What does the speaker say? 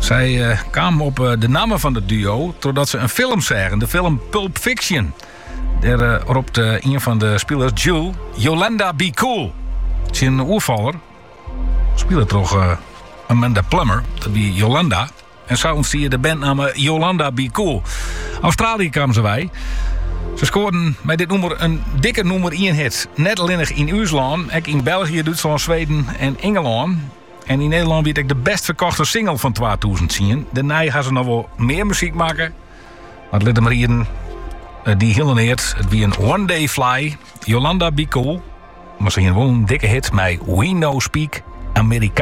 Sy kamen op de namme fan it duo trochdat se in film seagen, de film Pulp Fiction. Der ropt ien fan de spilers, Jules, Yolanda be cool tsjin in oerfaller, spile troch Amanda Plummer, dat wie Yolanda. En sa ûntstie de bandnamme Yolanda Be Cool. Australië kamen se wei. Se skoarden mei dit nûmer in dikke nûmer 1 hit. Net allinnich yn ús lân, ek yn België, Dútslân, Sweden en Ingelân. En yn Nederlân wie it ek de best ferkochte single fan 2010. Dêrnei ha se noch wol mear muzyk makke. Mar lit my riede. Eh, dy helle neat. It wie in One Day Fly. Yolanda Be Cool. Mar se hiene wol in dikke hit mei We No Speak Amerika.